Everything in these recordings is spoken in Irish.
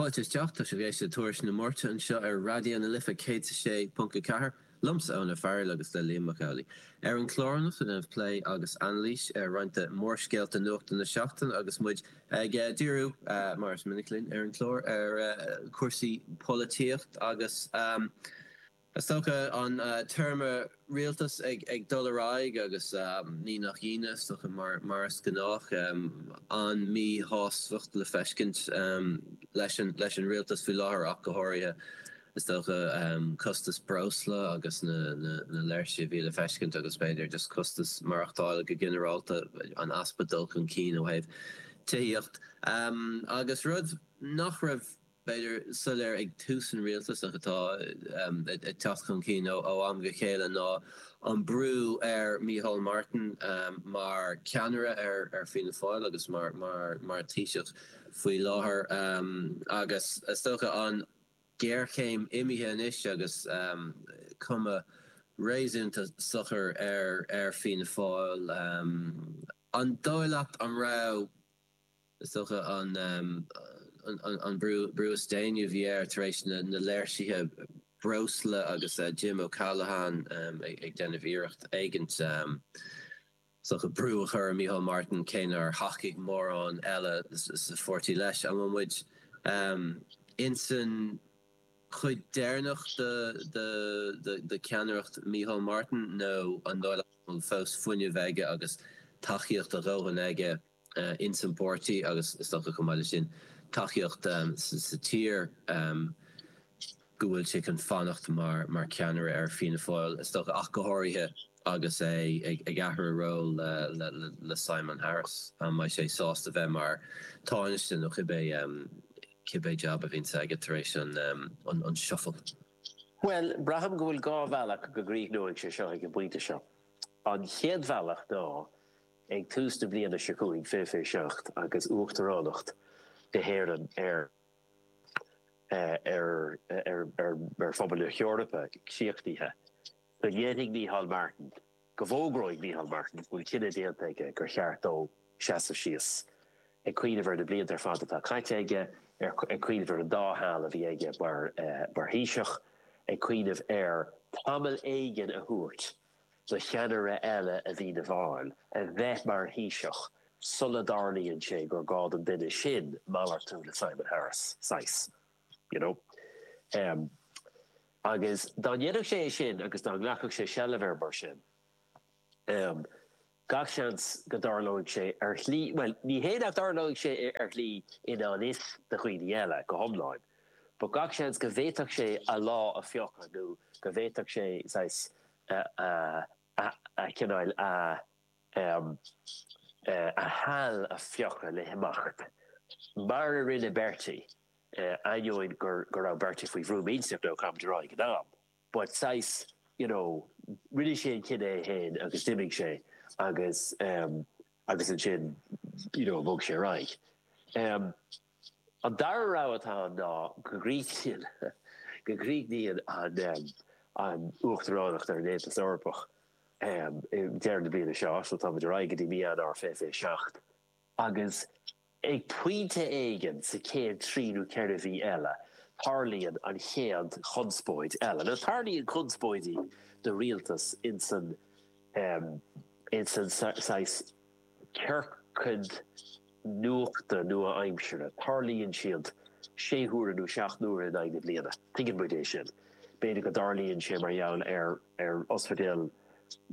Fáilte isteach, tá sibh ag éisteacht le Tuairisc na Máirte anseo ar Raidió na Life, céad is a sé ponc a ceathair, liomsa Eoin Ó Fearghail agus le Liam Mac Amhlaigh. Ar an chlár anocht déanfaimid plé agus anailís ar roinnt de mhórscéalta nuachta na seachtaine agus muid ag díriú, mar is minic linn ar an chlár, ar chúrsaí polaitíocht agus. Is dócha, an téarma 'rialtas' ag dul ar aghaidh agus ní nach ionadh, is dócha, mar is gnách, an míshástacht le feiscint leis an rialtas faoi láthair ach go háirithe. Is dócha, costas breosla agus na léirsí a bhí le feiscint agus b'fhéidir just costas maireachtála go ginearálta, an easpa dul chun cinn ó thaobh tithíocht agus rud nach raibh, b'fhéidir, soiléir ag tús an rialtais ach atá ag teacht chun cinn ó am go chéile ná an brú ar Micheál Martin mar cheannaire ar Fianna Fáil agus mar Thaoiseach faoi láthair agus, is dócha, an ghéarchéim imithe anois agus cuma réasúnta socair ar Fianna Fáil. An dóigh leat an raibh. Is dócha an brú is déanaí a bhí air tar éis na léirsithe breosla agus Jim O'Callaghan ag déanamh iarracht éigint is dócha brú a chur ar Micheál Martin, cé nár thacaigh mórán eile sa pháirtí leis. An bhfuil muid insan chuid deireanach de cheannaireacht Micheál Martin nó an dóigh leat go bhfuil fós fuinneamh aige agus tacaíocht a dhóthain aige, ins an bpáirtí agus, is dócha, chomh maith leis sin, tacaíocht sa tír go bhfuil sé chun fanacht mar cheannaire ar Fianna Fáil, is dócha, ach go háirithe agus é ag athrú ról le Simon Harris, an mbeidh sé sásta bheith mar Tánaiste nó cibé jab a bhíonn aige tar éis an shuffle? Bhuel, braithim go bhfuil dhá bhealach go gcríochnóidh sé seo ag an bpointe seo. An chéad bhealach ná Ag tús na bliana seo chugainn fiche fiche seacht agus Uachtaránacht na hÉireann ar Phobal na hEorpa críochnaithe. Go ndéanfaidh Micheál Martin, go bhfógróidh Micheál Martin go bhfuil cinneadh déanta aige gur cheart dó seasamh síos. Ag cuimhneamh ar na blianta ar fad atá caite aige, ag cuimhneamh ar na dá sheal a bhí aige mar Thaoiseach, ag cuimhneamh ar tamall éigin a thabhairt do cheannaire eile i bhFianna Fáil, a bheith mar Thaoiseach sula dtarlaíonn sé gur gá don duine sin malartú le Simon Harris, saghas, you know. Agus dá ndéanfadh sé é sin agus dá nglacfadh sé seilbh air mar sin, Gach seans go dtarlóidh sé ar shlí, bhuel, ní hé nach dtarlóidh sé ar shlí i ngan fhios do dhaoine eile go hiomlán, but gach seans go bhféadfadh sé a lá a phiocadh nó go bhféadfadh sé, saghas, a, cineál, a, a sheal a phiocadh le himeacht. Mar a rinne Bertie, ainneoin go raibh Bertie faoi bhrú millteach nó cibé ar bith ag an am. but saghas, you know, rinne sé an cinneadh é féin agus d'imigh sé agus, em, agus ansin, you know, bhog sé ar aghaidh. Em, an dara rogha atá ann ná go gcríochnaíonn, go gcríochnaíonn an, em, an uachtaránacht ar an Aontas Eorpach, em, i ndeireadh na bliana seo, so tá muid ar aghaidh go dtí mí Eanáir fiche, fiche seacht. Agus ag pointe éigin sa chéad trí nó ceithre mhí eile, tarlaíonn an chéad chonspóid eile. Nó tarlaíonn conspóidí do rialtas ins an saghas ciorcaid nuachta nua-aimseartha, tarlaíonn siad sé huaire nó seacht n-uaire in aghaidh na bliana. Tuigeann muid é sin. B'fhéidir go dtarlaíonn sé mar gheall ar ospidéal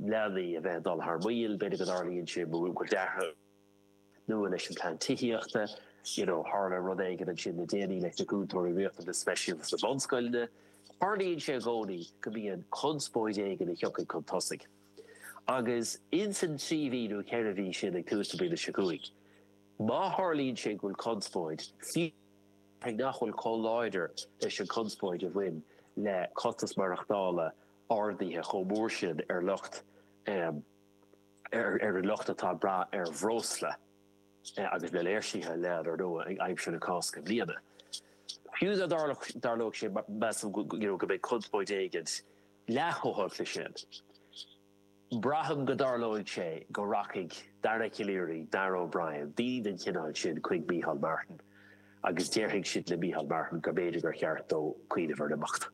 leanaí a bheith ag dul thar maoil, b'fhéidir go dtarlaíonn sé mar go mbíonn deacracht, nua leis an bplean tithíochta. You know tharla rud éigin ansin le déanaí leis na cúntóirí riachtanas speisialta sna bunscoileanna. Tarlaíonn sé i gcónaí go mbíonn conspóid éigin a thiocfaidh chun tosaigh. Agus ins an trí mhí nó ceithre mhí sin ag tús na bliana seo chugainn, má tharlaíonn sé go bhfuil conspóid, fiú nach bhfuil chomh láidir leis an chonspóid a bhain le costas maireachtála ardaithe chomh mór sin ar lucht ar an lucht atá ag brath ar bhreosla agus le léirsithe leath ar ndóigh ag aimsir na Cásca i mbliana. Fiú dá dtarlódh sé, measaim go mbeidh conspóid éigin leath chomh holc le sin. Braithim go dtarlóidh sé go rachaidh Dara Calleary, Darragh O'Brien, daoine den chineál sin chuig Micheál Martin agus déarfaidh siad le Micheál Martin go mb'fhéidir gur cheart dó cuimhneamh ar imeacht.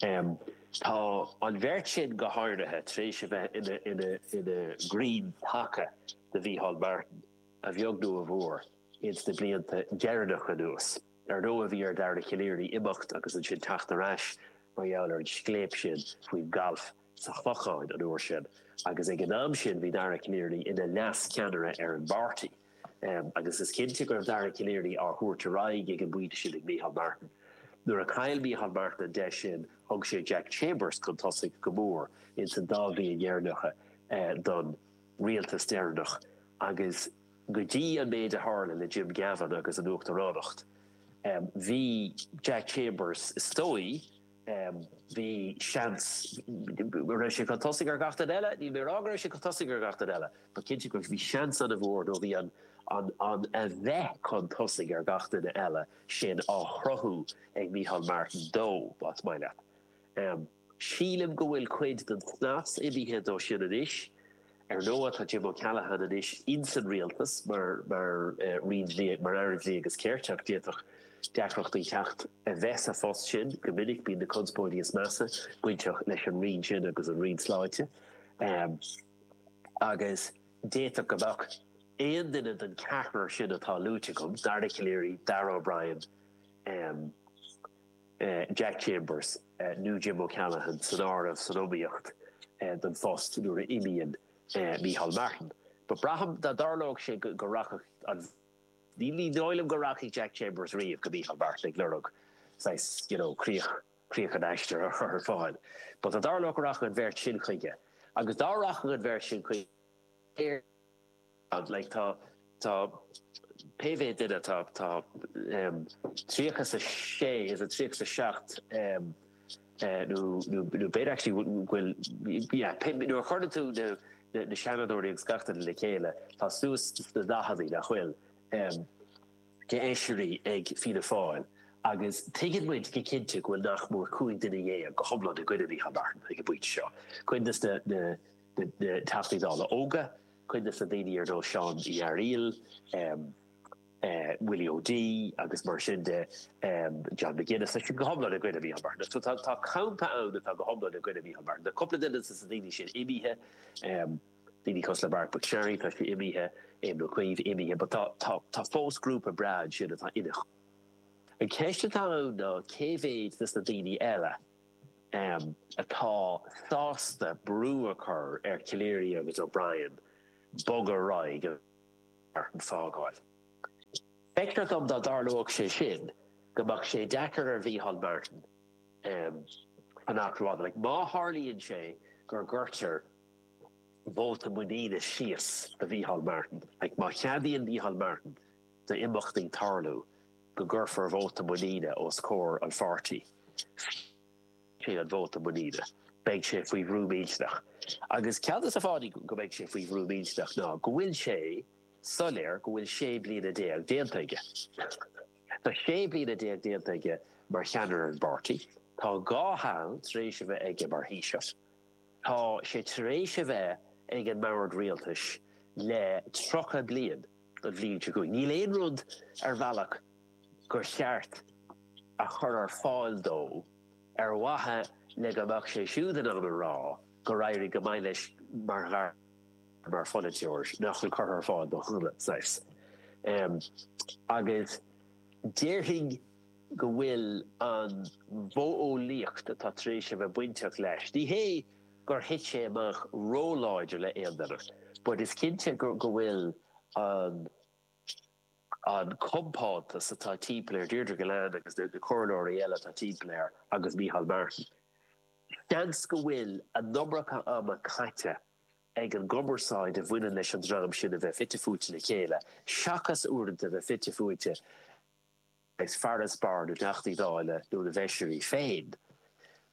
M, Tá an bheirt sin, go háirithe, tar éis a bheith ina gcrainn taca do Mhícheál Martin, a bheag nó a mhór, ins na blianta deireanacha anuas. Ar ndóigh, bhí ar Dhara Calleary imeacht agus ansin teacht ar ais mar gheall ar an scléip sin faoin galf sa Chlochán, an uair sin, agus ag an am sin, bhí Dara Calleary ina leas-cheannaire ar an bpáirtí. agus is cinnte go raibh Dara Calleary á thabhairt ar aghaidh ag an bpointe sin ag Micheál Martin. Nuair a chaill Micheál Martin an deis sin, thug sé Jack Chambers chun tosaigh, go mór ins an dá bhliain dheireanacha don rialtas deireanach agus go dtí an méid a tharla le Jim Gavin agus an uachtaránacht, bhí Jack Chambers, is dóigh, Bhí seans go raibh sé chun tosaigh ar gach duine eile, níl mé ag rá go raibh sé chun tosaigh ar gach duine eile, but cinnte go bhí seans ana mhór nó bhí an an bheith chun tosaigh ar gach duine eile sin á chruthú ag Micheál Martin dó, más maith leat. Sílim go bhfuil cuid den snas imithe dó sin anois. Ar ndóigh, tá Jim O'Callaghan anois ins an rialtas mar Aire Dlí agus Cirt ach d'fhéadfadh deacrachtaí theacht a bheith sa phost sin. Go minic bíonn na conspóidí is measa bainteach leis an roinn sin agus an roinn sláinte agus d'fhéadfadh go mbeadh aon duine den cheathrar sin atá luaite agam, Dara Calleary, Darragh O'Brien, Jack Chambers nó Jim O'Callaghan san áireamh san iomaíocht don phost nuair a imíonn Micheál Martin. But braithim dá dtarlódh sé go rachadh Ní dóigh liom go rachaidh Jack Chambers riamh go Micheál Martin ag lorg saghas, you know, críoch críoch an aistir a chur ar fáil. But dá dtarlódh go rachadh an bheirt sin chuige agus dá rachadh an bheirt sin chuige, Tá pé mhéad duine atá, tá tríocha is a sé, is a tríocha is a seacht, nó b'fhéidir actually bhfuil, nuair a chuireann tú na seanadóirí agus na Teachtaí Dála le chéile, tá suas sna daicheadaí, nach bhfuil, de fheisirí ag Fianna Fáil agus tuigeann muid go cinnte go bhfuil nach mór cúig dhuine dhéag go hiomlán i gcoinne Micheál Martin ag an bpointe seo, cuid de na Teachtaí Dála óga, Cuid de na daoine ar nós Seán Uí Fhearaíl, Willie O'Dea agus mar sin de, John McGuinness, tá siad go hiomlán i gcoinne Micheál Martin. So tá campa ann atá go hiomlán i gcoinne Micheál Martin. Tá cúpla duine de na daoine sin imithe, daoine cosúil le Marc MacSharry, tá sé imithe, Éamon Ó Cuív imithe, but tá fós grúpa breá ansin atá ina choinne. An cheist atá ann ná cé mhéad de na daoine eile, atá sásta brú a chur ar Calleary agus O'Brien bogadh ar aghaidh go Martin fágáil. Feictear dom dá dtarlódh sé sin go mbeadh sé deacair ar Mhícheál Martin fanacht lárnach. Má tharlaíonn sé go gcuirtear vóta muiníne síos do Mhícheál Martin, má cheadaíonn Mícheál Martin d'imeachtaí tarlú, go gcuirfear vóta muiníne os comhair an pháirtí, fiú an vóta muiníne, beidh sé faoi bhrú millteanach. Agus ceann de na fáthanna go mbeidh sé faoi bhrú millteanach ná go bhfuil sé soiléir go bhfuil sé bliana déag déanta aige. Tá sé bliana déag déanta aige mar cheannaire ar an bpáirtí. Tá dhá sheal tar éis a bheith aige mar Thaoiseach. Tá sé tar éis a bheith ag an mbord rialtais le tríocha bliain. bhliain seo chugainn. Níl aon rud ar bhealach gur cheart a chur ar fáil dó ar mhaithe le go mbeadh sé siúd in ann a rá gur éirigh go maith leis mar ghasúr, mar pholaiteoir nach bhfuil curtha ar fáil dó saghas. Agus déarfainn go bhfuil an mhodheolaíocht atá tar éis a bheith bainteach leis, ní hé. gur thit sé amach ró-láidir le aon duine, but is cinnte go bhfuil an compántas atá timpeall air, Deirdre Gillane agus na comhairleoirí eile atá timpeall air agus Micheál Martin, seans go bhfuil an iomarca ama caite ag an gcumarsáid a bhaineann leis an dream sin a bheith fite fuaite le chéile seachas uaireanta a bheith fite fuaite Is farasbarr na dTeachtaí Dála nó na bhFeisirí féin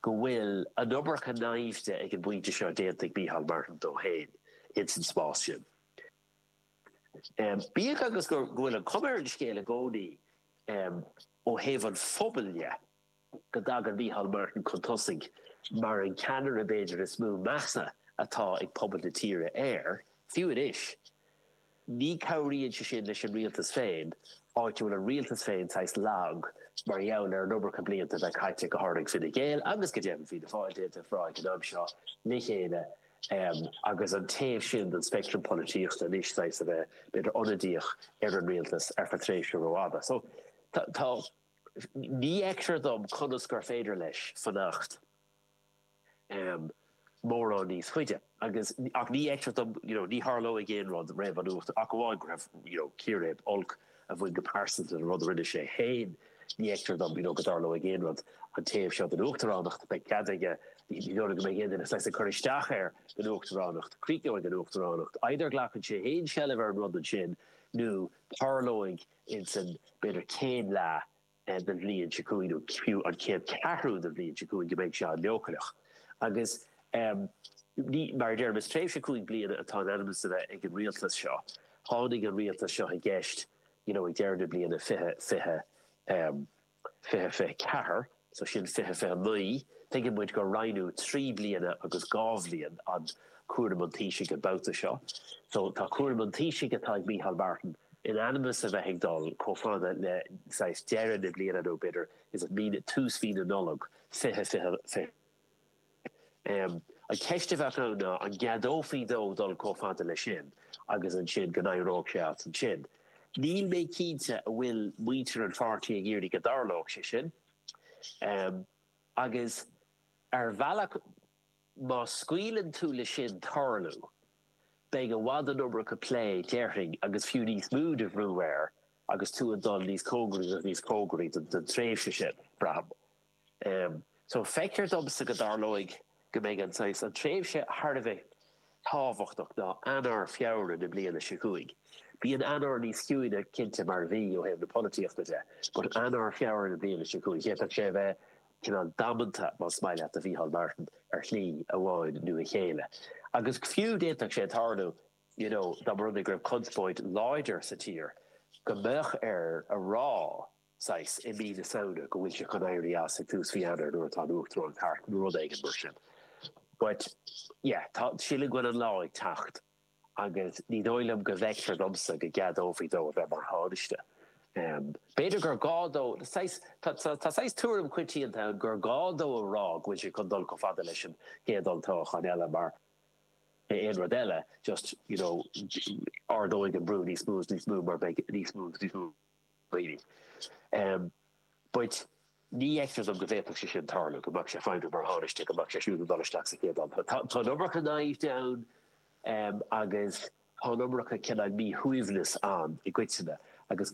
go bhfuil an iomarca naimhde ag an bpointe seo déanta ag Micheál Martin dó féin ins an spás sin. Bíodh agus go bhfuil an chuma ar an scéal i gcónaí ó thaobh an phobail dhe, go dtagann Micheál Martin chun tosaigh mar an ceannaire b'fhéidir is mó measa atá ag pobal na tíre air, fiú anois. Ní cabhraíonn sé sin leis an rialtas féin, áit a bhfuil an rialtas féin saghas lag mar gheall ar an iomarca blianta a bheith caite, go háirid ag Fine Gael agus go deimhin Fianna Fáil, déanta a phráigh an am seo le chéile agus an taobh sin den speictream polaitíochta anois saghas a bheith b'fhéidir ionadaíoch ar an rialtas ar feadh tréimhse rófhada. So tá. Ní fheictear dom conas gur féidir leis fanacht mórán níos faide, agus, ach ní fheictear dom, you know, ní tharlóidh aon rud roimh an uacht, ach amháin go raibh, you know, círéib olc a bhain go pearsanta le rud a rinne sé féin. Ní fheictear dom, you know, go dtarlóidh aon rud an taobh seo den uachtaránacht, beidh cead aige, ní dóigh go mbeidh aon duine saghas ag cur isteach air don uachtaránacht, críochnóidh an uachtaránacht, either glacann sé féin seilbh ar an rud ansin nó tarlóidh, insan b'fhéidir céad leath den bhliain seo chugainn nó fiú an chéad cheathrú den bhliain seo chugainn go mbeidh sé an-leochaileach. Agus mar a deirim, is tréimhse cúig bliana atá in ainm is a bheith ag an rialtas seo. Tháinig an rialtas seo i gceist, you know, ag deireadh na bliana 2020. 2024, so sin 2029, tuigeann muid gur roinneadh trí bliana agus dhá bhliain an cúram an Taoisigh an babhta seo. So tá cúram an Taoisigh atá ag Micheál Martin in ainm is a bheith ag dul chomh fada le saghas deireadh na bliana nó b'fhéidir is é tús mhí na Nollag 2026. An cheist a bheadh ann ná an gceadófaí dó dul chomh fada leis sin agus ansin go n-éireodh sé as ansin. Níl mé cinnte an bhfuil muintir an pháirtí ag iarraidh go dtarlódh sé sin. Agus ar bhealach má scaoileann tú le sin tarlú beidh i bhfad an iomarca plé déarfainn agus fiú níos mó de bhrú air agus tú ag dul níos cóngaraí agus níos cóngaraí don tréimhse sin, braithim. so, feictear domsa go dtarlóidh go mbeidh an saghas, an tréimhse thar a bheith tábhachtach ná Eanáir, Feabhra na bliana seo chugainn. Bíonn Eanáir níos ciúine cinnte mar mhí ó thaobh na polaitíochta de, but Eanáir, Feabhra na bliana seo chugainn, d'fhéadfadh sé a bheith cineál damanta, más maith leat, do Mhícheál Martin ar shlí amháin nó a chéile. Agus fiú d'fhéadfadh sé tarlú, you know, dá mba rud é go raibh conspóid láidir sa tír, go mbeadh air a rá, saghas, i mí na Samhna, go bhfuil sé chun éirí as ag tús mhí Eanáir nuair atá an Uachtaránacht thart nó rud éigin mar sin. But, yeah, tá, sílim go bhfuil an lá ag teacht agus ní dóigh liom ní fheictear domsa go gceadófaí dó a bheith mar Thánaiste. B'fhéidir gur gá dó, saghas, tá saghas tuairim choitianta ann gur gá dó a rá go bhfuil sé chun dul chomh fada leis an gcéad olltoghachán eile mar aon rud eile, just, you know, ardóidh an brú níos mó is níos mó mar beidh níos mó is níos mó. But ní fheictear dom go bhféadfadh sé sin tarlú, go mbeadh sé ag feidhmiú mar thánaiste, go mbeadh sé siúd ag dul isteach sa chéad am. Tá an iomarca naimhde ann agus tá an iomarca cineál míshuaimhneas ann i gcoitinne agus